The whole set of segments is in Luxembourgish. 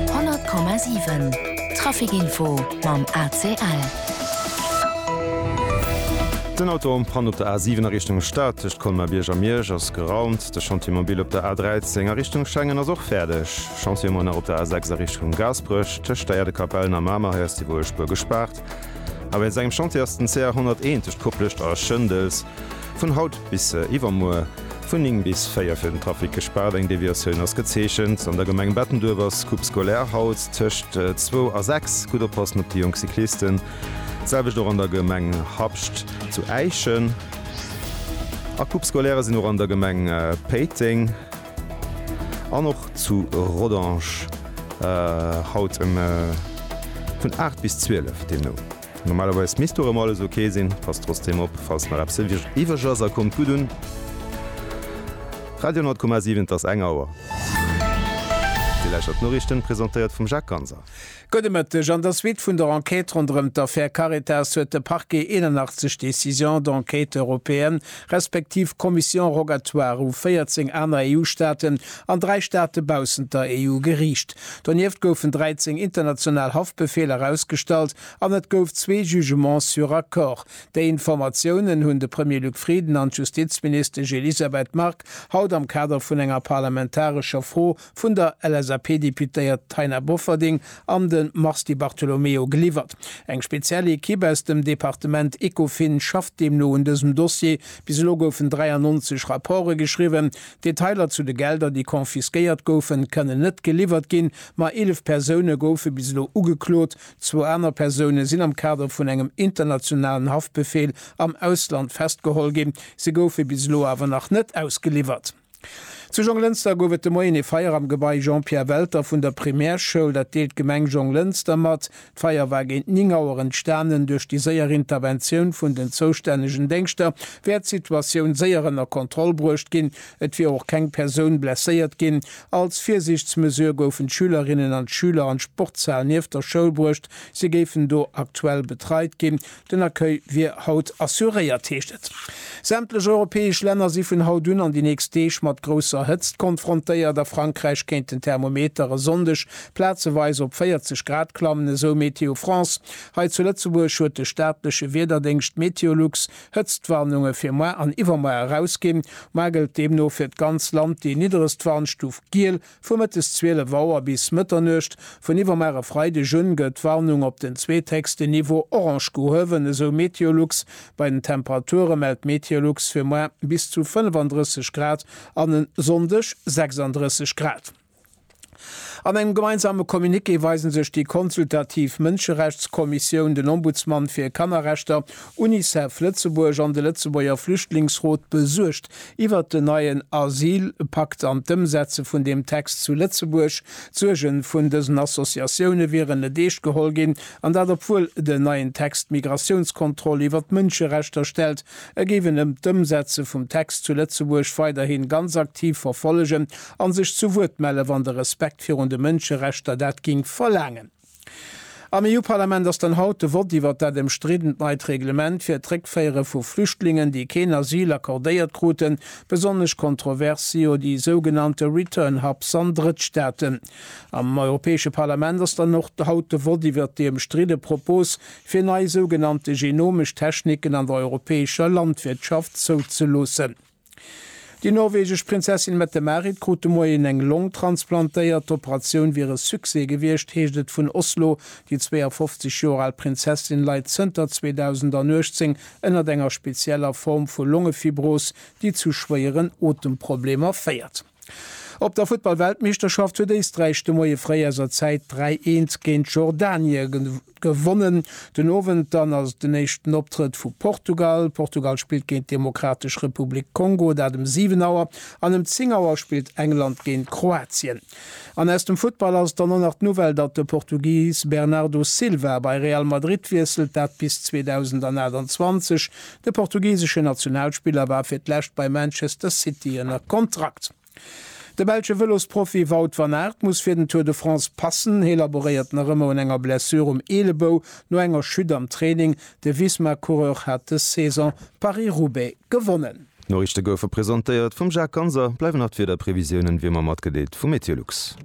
100,7 Trafic Info mam ACL. Den Auto am Panne op der A7 a Richtung Stad, tëscht Colmar-Bierg a Miersch, ass geraumt. De Chantier mobil op der A13 a Richtung Schengen ass och fäerdeg. Chantier ëmmer nach op der A6 a Richtung Gaasperech, tëscht der Äerdekapellen a Mamer. Hei ass déi Wuespuer gespaart. A wéinst engem Chantier ass den CR 101 tëscht Koplescht a Schëndels. Vun haut bis iwwermuer vun 9 bis 4 fir den Trafic gespaart. Eng Deviatioun ass gezeechent. An der Gemeng Bettenduerf ass d'Coupe scolaire haut tëscht zwou a sechs. Gutt oppassen op déi jonk Cyclisten. D'selwecht och an der Gemeng Habscht zu Äischen. A Coupe scolaire sinn och an der Gemeng Péiteng an och zu Rodange haut vun 8 bis 12 deemno. Normalerweis misst dorëmmer alles ok sinn, pass trotzdem op falls nach eppes iwweg ass a kommt gutt un. Radio 10,7 Et ass eng Auer. Dir lauschtert d'Noriichten, presentéiert vum Jacques Ganser. Gudde Mëtteg. An der Suite vun der Enquête ronderëm d'Affär Caritas huet de Parquet 81 Décisions d'enquête européennes respektiv Commission rogatoire u 14 aner EU-Staaten an dräi Staate baussent der EU geriicht. Donieft goufen 13 international Haftbefeeler ausgestallt an et gouf zwee Jugements sur accord. Déi Informatiounen hunn de Premier Luc Frieden an d'Justizministesch Elisabeth Margue haut am Kader vun enger parlamentarescher Fro vun der LSAP-Deputéiert Taina Bofferding an de Mars Di Bartolomeo geliwwert. Eng speziell Ekipp aus dem Departement Ecofin schafft deemno un dësem Dossier. Bis elo goufen 93 Rapporte geschriwwen. Detailer zu de Gelder, déi confisquéiert goufen, kënnen net geliwwert ginn. Ma 11 Persoune goufe bis elo ugeklot. Zwou aner Persoune sinn am Kader vun engem internationalen Haftbefeel am Ausland festgeholl ginn. Si goufe bis elo awer nach net ausgeliwwert. Zu Jonglënster gouf et de Moien ee Feier am Gebai Jean-Pierre Welter vun der Primärschoul. Dat deelt d'Gemeng Jonglënster mat. D'Feier war géint 9 Auer entstanen. Duerch déi séier Interventioun vun den zoustännegen Déngschter wär d'Situatioun séier ënner Kontroll bruecht ginn. Et wier och keng Persoun blesséiert ginn. Als Virsiichtsmesure goufen d'Schülerinnen an d'Schüler an d'Sportshal nieft der Schoul bruecht. Si géifen do aktuell betreit ginn. Den Accueil wier haut assuréiert, heescht et. Sämtlech europäesch Länner si vun haut un an déi nächst Deeg mat grousser Hëtzt konfrontéiert. A Frankräich kéint den Thermometer e Sonndeg plazeweis op 40 Grad klammen, esou Météo France. Hei zu Lëtzebuerg huet de staatleche Wiederdéngscht Meteolux Hëtztwarnunge fir moar an iwwermoar erausginn. Moar gëllt deemno fir d'ganz Land déi nidderegst Warnstuf giel. Vu mëttes 12 Auer bis Mëtternuecht vun iwwermar e Freideg un gëtt d'Warnung op den zweethéchsten Niveau orange gehuewen, esou Meteolux. Bei den Temperature mellt Meteolux fir muer bis zu 35 Grad an en Sonndeg 36 Grad. An engem gemeinsame Communiqué weise sech déi consultativ Mënscherechtskommissioun, den Ombudsmann fir Kannerrechter, Unicef Lëtzebuerg an de Lëtzebuerger Flüchtlingsrot besuergt Iwwert den neien Asylpakt an d'Ëmsetze vun deem Text zu Lëtzebuerg. D'Suerge vun dësen Associatioune wieren net eescht geholl ginn, an dat obwuel den neien Text d'Migratiounskontroll iwwert d'Mënscherechter stellt. E géif en ëm d'Ëmsetze vum Text zu Lëtzebuerg weiderhi ganz aktiv verfollegen a sech zu Wuert melle wann de Respekt virun de Mënscherechter dat géing verlaangen. Am EU-Parlament ass dann haut de Vott iwwert dat ëmstriddent neit Reglement fir d'Réckféiere vu Flüchtlingen, déi keen Asyl accordéiert kruten. Besonnesch kontrovers si jo déi sougenannte Return Hubs an Drëttstaaten. Am Europäesche Parlament ass dann och haut de Vott iwwert déi ëmstridde Propos, fir nei sougenannte genomesch Techniken an der europäescher Landwirtschaft zouzeloossen. Déi norwegesch Prinzessin Mette-Marit krut de Moien eng Long transplantéiert. D'Operatioun wier e Succès gewiescht, heescht et vun Oslo. Déi 52 Joer al Prinzessin leit zënter 2018 ënnert enger spezieller Form vu Longefibros, déi zu schwéieren Otemproblemer féiert. Op der Futtball-Weltmeeschterschaft huet Éisträich de Moie fréi aus a Zäit 3, 1 géint Jordanie gewonnen. Den Owend dann ass et den éischten Optrëtt vu Portugal. Portugal spillt géint d'Demokratesch Republik Kongo, dat ëm 7 Auer. An ëm 10 Auer spillt England géint Kroatien. An aus dem Futtball ass et dann och nach d'Nouvelle, datt de Portugis Bernardo Silva bei Real Madrid wiesselt, dat bis 2028. De portugiseschen Nationalspiller war fir d'lescht bei Manchester City ënner Kontrakt. De belsche Vëlosprofi Wout van Aert muss fir den Tour de France passen. Hie laboréiert nach ëmmer un enger Blessure um Eelebou no enger Chute am Training. De Visma-Coureur hat dës Saison Paris-Roubaix gewonnen. D'Noriichte goufe presentéiert vum Jacques Ganser. Bleiwen nach d'Wiederprevisiounen wéi ëmmer matgedeelt vu MeteoLux.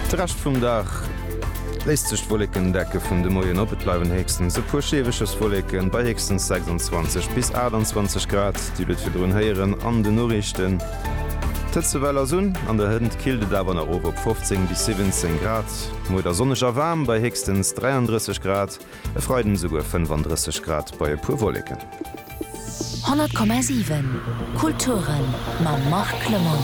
De Rescht vum Dag léisst sech d'Wollekendecke vun de Moien op, et bleiwen héchstens e puer Schiewecherswolleken bei héchstens 26 bis 28 Grad. Dir hutt et virdrun héieren an den Noriichten, d'Hëtzewell ass un, an der Hënt killt et awer nach of op 15 bis 17 Grad. Muer da sonneg a waarm bei héchstens 33 Grad. E Freiden esouguer 35 Grad bei e puer Wolleken. 100,7 Kulturen mam Marc Clement.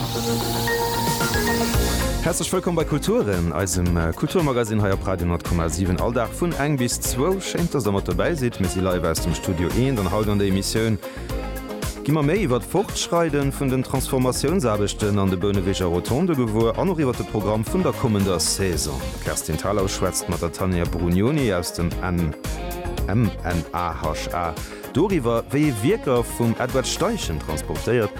Häerzlech wëllkomm bei Kulturen, eisem Kulturmagazin hei op Radio 10,7. All Dag vun eng bis zwou. Schéint, dass der mat dobäi sidd. Mir si live aus dem Studio Eent an haut an der Emissioun. Gi mer méi iwwer d'Fortschreiden vun den Transformatiounsaarbechten an de Bouneweger Rotonde gewuer an och iwwer de Programm vun der kommender Saison. D'Kerstin Thalau schwätzt mat der Tania Brugnoni aus dem MNAHA doriwwer, wéi ee Wierker vum Edward Steichen transportéiert.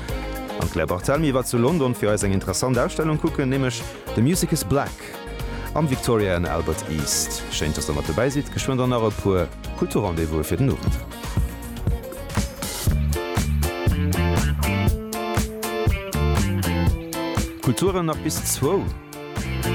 An d'Claire Barthelmy war zu London fir eis eng interessant Ausstellung kucken, nämlech The Music Is Black. Park am Victoria and Albert East. Schéin dass der mat dobäi sidd. Geschwënn dann nach e puer Kulturrendez-vouse fir den Owend. Kulturen nach bis zwou.